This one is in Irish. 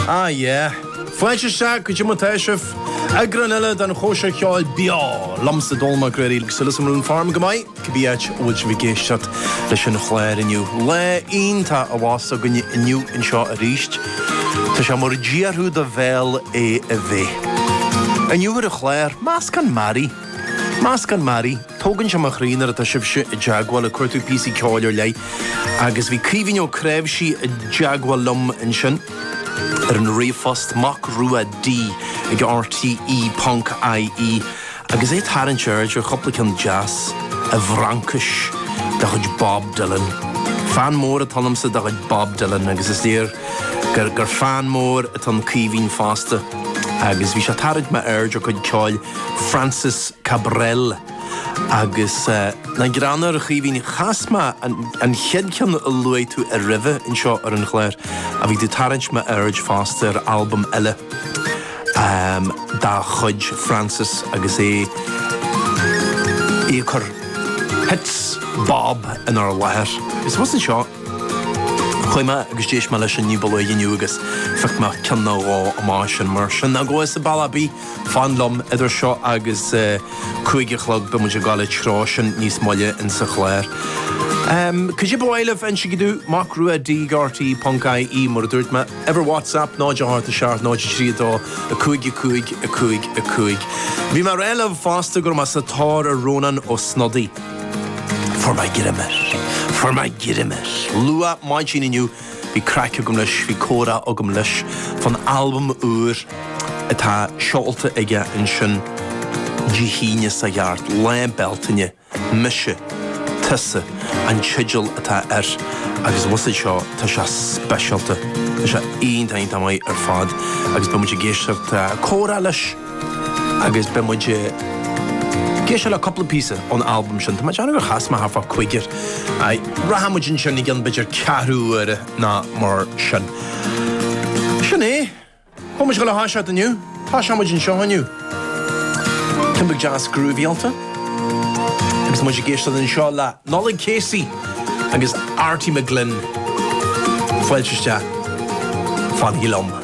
Ah yeah. Fáilte isteach, cad é mar tá sibh. Eagrán eile den chóisir cheoil beo liomsa Dónall Mac Ruairí agus Uile San Rún Farm go maith, cibé áit a bhfuil sibh ag éisteacht leis an chláir inniu. Lá iontach a bheas againne inniu anseo arís. Tá sé mar a d'iarrfadh do bhéal é a bheith. Inniu ar an chláir, meascán mearaí. Meascán mearaí. Tógann sé mo chroí nuair atá sibhse i dteagmháil, ag cuartú píosaí ceoil ar leith. Agus bhí Caoimhín Ó Creabhsí i dteagmháil liom ansin ar an ríomhphost, macruad ag rte ponc IE, agus é ag tarraingt aird ar chúpla ceann deas i bhFraincis de chuid Bob Dylan. Fan mór atá ionamsa de chuid Bob Dylan, agus is léir gur fan mór atá in Caoimhín fosta, agus bhí sé ag tarraingt m'aird ar chuid ceoil. Francis Cabrel agus nach greannmhar, a Chaoimhín. Chas mé an chéad cheann a luaigh tú roimhe anseo ar an gclár ach bhí tú ag tarraingt m'aird fosta ar albam eile dá chuid, Francis agus é ag cur hits bob inár láthair. I suppose anseo chuaigh mé agus d'éist mé leis ina iomláine inniu agus phioc mé ceann nó dhó amach as sin mar sin. Ná gabh thusa bealach ar bith! Fan liom, idir seo agus cúig a chlog beidh muid ag gabháil an treo sin níos moille insa chlár. Cad é ba mhaith libh, insigí domh, macruad ag rte ponc IE mar a dúirt mé. Uimhir WhatsApp 087 032 55 55. Bhí mé ag rá libh fosta go raibh mé sa tóir ar Rónán Ó Snodaigh. Fuair mé greim air. Fuair mé greim air luath maidin inniu Bhí craic agam leis, bhí comhrá agam leis fán albam úr atá seolta aige ansin Dé hAoine seo thart, Lá Bealtaine, Mise, Tusa an teideal atá air agus a bhusáid seo tá sé speisialta, tá sé iontach iontach maith ar fad agus beidh muid ag éisteacht le comhrá leis. Agus beidh muid ag éisteacht le cúpla píosa ón albam sin. Tá mé ag déanamh gur chas mé thart fá chúigear. Aye. Rachaidh muid ansin i gceann b'fhéidir ceathrú uaire ná mar sin. Sin é. Tá muid ag gabháil a thoiseacht inniu. Tosóidh muid anseo inniu. Cineál deas groovy-áilte. Agus tá muid ag éisteacht anseo le Nollaig Casey agus Arty McGlynn fáilte isteach fanaigí liom.